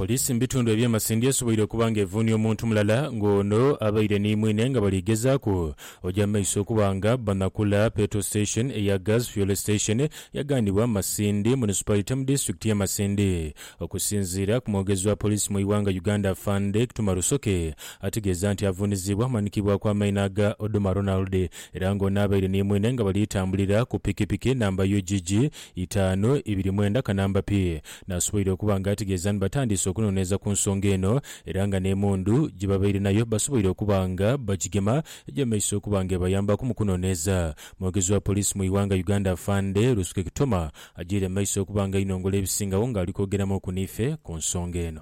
Poliisi mu bitundu eby'e Masindi esoboire okuba nga evuunia omuntu mulala nga ono abaire ni mwine nga bali gezaaku oja mu maiso okuba nga banakula Petrol Station eya Gas Fuel Station yaghanibwa Masindi Municipality mu Disitulikiti ye Masindi. Okusinziira ku mwogezi wa Poliisi mu ighanga Uganda Afande Kituma Rusoke ategeeza nti avuunizibwa amanikibwaku amaina aga Oduma Ronald era nga ono abaire ni mwine nga bali tambulira ku Pikipiki namba UGG itaanu ibiri mwenda kanamba pi. Naasoboire okuba nga ategeeza ni batandiise okunoneeza ku nsonga eno era nga n'emundu gye babaire nayo basoboire okuba nga bagigema egyemeise okuba nga ebayambaku mu kunoneeza. Mwogezi wa poliisi mu ighanga Uganda Afande Rusuke Kitoma agyeire mu maiso okuba nga ainongola ebisingagho nga ali kwogeramuuku niife ku nsonga eno.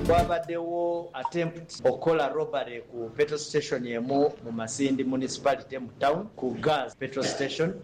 Kwabadegho attempt okukola robbery ku petrol station emu mu Masindi Municipality mu town ku Gaz petrol station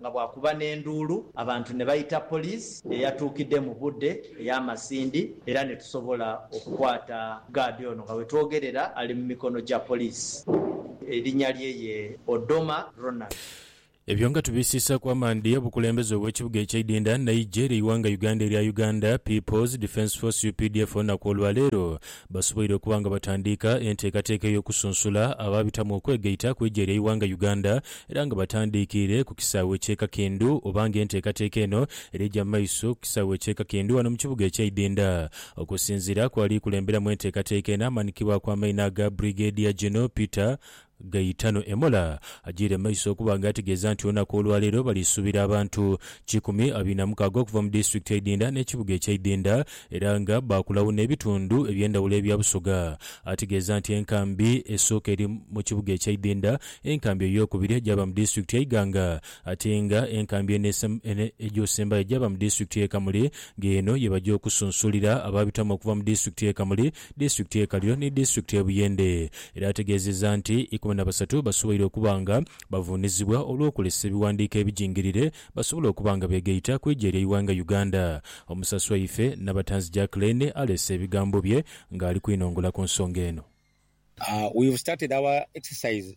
nga bwakuba n'enduulu abantu ne baita poliisi eyatuukidde mu budde ey'amasindi era ne tusobola okukwata gaadi ono nga wetwogerera ali mu mikono gya poliisi erinnya lye ye Odoma Ronald. Ebyo nga tubisiisaaku amaadhi, obukulembeze obw'ekibuga ekye Idinda n'eigye ly'eighanga Uganda erya Uganda People's Defence Force, updf, olunaku olwaleero basoboire okuba nga batandiika enteekateeka ey'okusunsula abaabitamu okwegaita ku eija ly'eighanga Uganda era nga batandiikiire ku kisaawe ky'e Kakindu oba nga enteekateeka eno erija mu maiso ku kisaawe ky'e Kakindu ghano mu kibuga ekya Idinda. Okusinziira ku ali kulemberamu enteekateeka eno amaanikibwaku amaina aga Brigadier General Peter Gaetano Emola agyiire mu maiso okuba nga ategeeza nti olunaku olwaleero balisuubira abantu kikumi abina mukaaga okuva mu disitulikiti eidhindha n'ekibuga ekyeidhindha era nga baakulagho n'ebitundhu ebyendhawulo ebya Busoga. Ategeeza nti enkambi esooka eri mu kibuga ekyeidhindha, enkambi ey'okubiri egyaba mu disitulikiti ye Iganga ate nga enkambi eno egyosembayo gyaba mu disitulikiti ye Kamuli nga eno yebagya okusunsulira abaabitamu okuva mu disitulikiti ye Kamuli disitulikiti y'e Kaliro ni disitulikiti y'e Buyende era ategeezezza nti ikumi na basatu basoboire okuba nga bavuunizibwa olw'okukozesa ebiwandiiko ebijingirire basobole okuba nga beegaita ku ija ery'eighanga Uganda. Omusasi waife Nabatanzi Jack Lane aleese ebigambo bye ng'ali kwinongola ku nsonga eno. We've started our exercise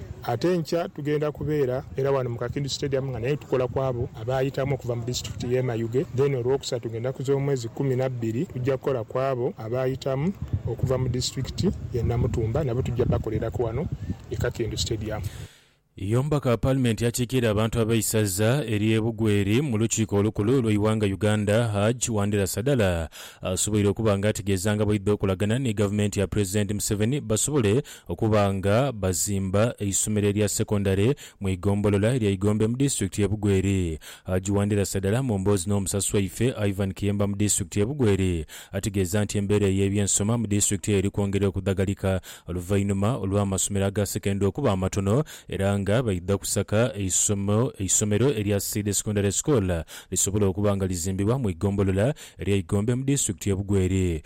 Ate enkya tugenda kubeera era wano mu Kakindu Stadium nga nayo tukola kwabo abaayitamu okuva mu disitulikiti y'e Mayuge then Olwokusatu ngenda ku z'omwezi kkumi na bbiri tujja kukola kwabo abaayitamu okuva mu disitulikiti y'e Namutumba nabo tujja bakoleraku wano e Kakindu Stadium. Ye omubaka wa paalimenti akiikirira abantu ab'eisaza ery'e Bugweri mu lukiiko olukulu olw'eighanga Uganda, Hajj Wandera Sadala asoboire okuba nga ategeeza nga bwaidha okolagana ni gavumenti ya pulezidenti Museveni basobole Okuba nga bazimba eisomero erya secondary mu igombolola erya Igombe mu disitulikiti ye Bugweri. Haji Wandirasa dala mu mboozi n'omusasi waife Ivan Kiyemba mu disitulikiti ye Bugweri ategeeza nti embeera ey'ebyensoma mu disitulikiti eri kwongera okudhagalika oluvainhuma olw'amasomero aga secondary okuba amatono era nga baidha kusaka eisomo eisomero erya Seed Secondary School lisobole okuba nga lizimbibwa mu igombolola erya Igombe mu disitulikiti ye Bugweri.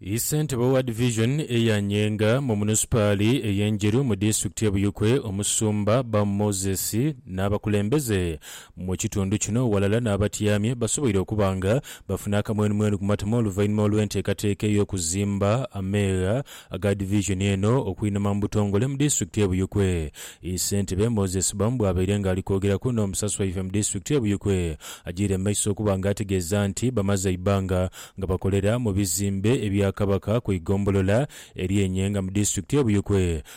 Ye ssentebe owa divizoni eya Nyenga mu munisipaali ey'e Njeru mu disitulikiti y'e Buyikwe, Omusumba Bamu Moses n'abakulembeze Mu kitundu kino ghalala n'abatyamye basoboire okuba nga bafuna akamwenumwenu ku matama oluvainhuma olw'enteekateeka ey'okuzimba ameegha aga Division eno okwinama mu butongole mu Disitulikiti e Buyikwe. Ii Ssentebe Moses Bam bwabaire nga ali kwogeraku n'omusasi waife mu Disitulikiti e Buyikwe ajiire mu maiso okuba nga ategeeza nti bamaze eibbanga nga bakolera mu bizimbe ebya Kabaka ku igombolola erye Nyenga mu Disitulikiti e Buyikwe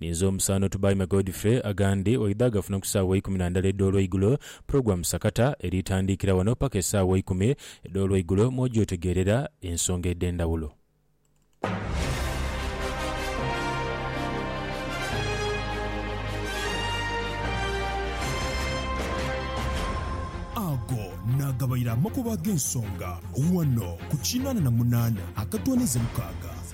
Ninze omusaano Tubaime Godfrey, agandi oidha agafuna ku saawa eikumi na ndala edh'olweigulo, pulogulamu sakata eri itandiikira wano paka esaawa eikumi edh'olweigulo mw'oja otegeerera ensonga edh'endhawulo. Ago naagabaire amakubo ag'ensonga wano ku kinaana na munaana akatoonaiza mukaaga.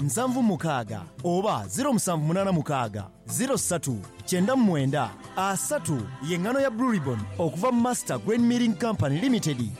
nsanvu mukaaga oba ziro musanvu munaana mukaaga ziro satu kyenda mu mwenda asatu ye ngano ya Blue Ribbon okuva mu Master Grain Milling Company Limited.